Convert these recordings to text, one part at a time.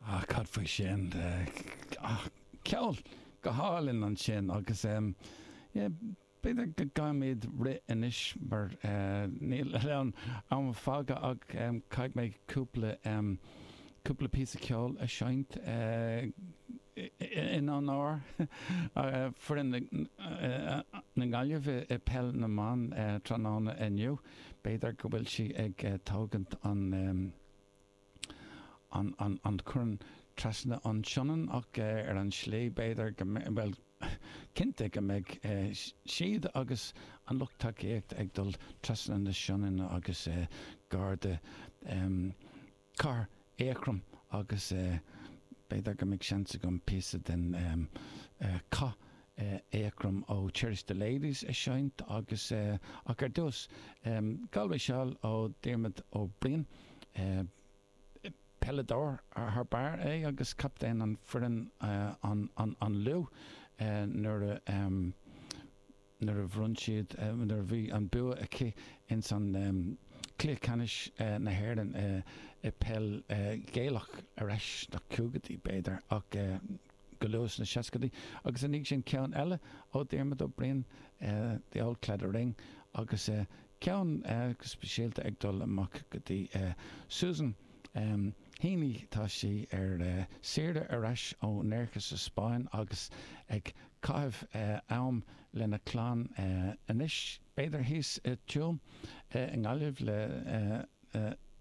Ah, cad faoi sin? Ah, ceol go hálainn ansin agus em, yeah, b'fhéidir go gcaithfimid rith anois mar níl an am fágtha ach em, caithfidh mé cúpla em, cúpla píosa ceol a seinnt eh, in onóir foireann na Gaillimhe i peil na mban tráthnóna inniu. B'fhéidir go bhfuil sí ag tógaint an choirn trasna an tSionainn ach ar an tslí b'fhéidir go mbeidh, bhuel, cinnte go mbeidh siad agus an lucht tacaíochta ag dul trasna na Sionainne agus gar do chathair Eachroim agus b'fhéidir go mbeidh seans agam píosa den chath Eachroim ó Cherish the Ladies a seinnt agus ach ar dtús Galway Shawl ó Dhiarmaid Ó Briain. Peileadóir thar barr é agus captaen an foireann an Lú nuair a nuair a bhronn siad, nuair a bhí an bua aici ins an Cluiche Ceannais na hÉireann i peil Ghaelach ar ais sna caogaidí, b'fhéidir, go luath sna seascaidí. Agus ina dhiaidh sin ceann eile ó Dhiarmaid Ó Briain, The Auld Claddagh Ring, agus ceann go speisialta ag dul amach go dtí Susan, Um Henley tá sí ar saoire ar ais ó Nerja sa Spáinn agus ag caitheamh am lena clann anois, b'fhéidir thíos i Tuaim i nGaillimh le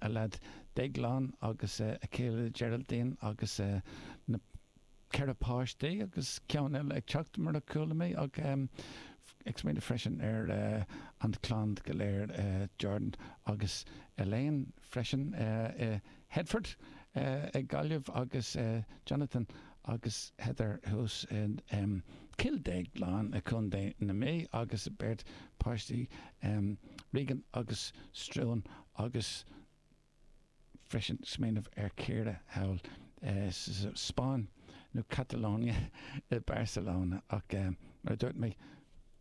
a leaid Déaglán agus a chéile Geraldine agus na ceithre páistí agus ceann eile ag teacht mar a chuala mé ach ag smaoineamh freisin ar an clann go léir Jordan agus Elaine. freisin i Headford i nGaillimh agus Jonathan agus Heather thuas i gCill Dhéagláin i Co. na Mí agus a beirt páistí Regan agus Struan agus freisin smaoineamh ar Ciara thall sa Spáinn nó Catalonia i Barcelona ach mar a dúirt mé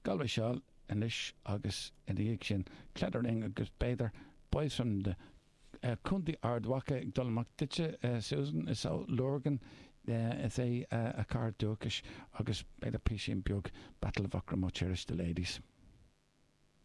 Galway shawl anois agus ina dhiaidh sin, Claddagh Ring agus b'fhéidir Boys from the Contae Ard Mhacha ag dul amach duitse, Susan, is ó Lurgan is ea a cathair dúchais, agus b'fhéidir písín beag Battle of Aughrim ó Cherish the Ladies.